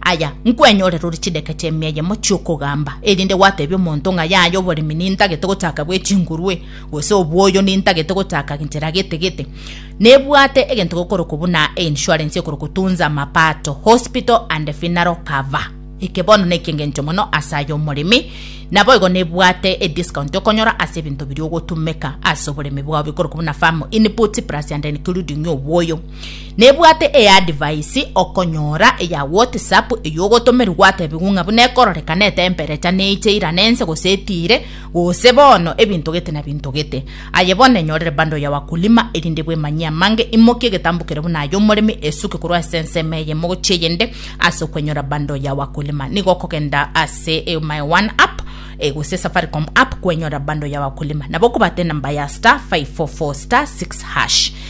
Aya, nkwenyorere ore chidaka chia emia eyemo chi'okogamba, erinde gwatebia omonto ng'a yaya oboremi nintagete gochaka bwe chingurwe, gose obwoyo nintagete gochaka genchera gete gete. Nebwate egento gekorokwa buna einsurance ekorokwa Tunza Mapato Hospital and Funeral Cover. Eke bono ne eki'engencho mono ase aye omoremi, naboigo nebwate ediscount okonyora ase ebinto biria ogotumeka ase oboremi bwao bikorokwa buna farm inputs plus and including obwoyo. Nebwate eadvice okonyora eya WhatsApp eyogotomerwa gwatebiwa ng'a buna ekororekana etemperecha neiche irana ense gose etiire gose bono ebinto gete na binto gete. Aye bono enyorire bundle ya wakulima erinde bwemanyie amange imokie egetambu kere buna ay'omoremi esuke korwa ase ensemo eyemo gochia eyende ase okwenyora bundle ya wakulima nigo okogenda ase my one app eh, gose Safaricom app kwenyora bundle ya wakulima nabo okobata enamba ya star 544 star 6 hash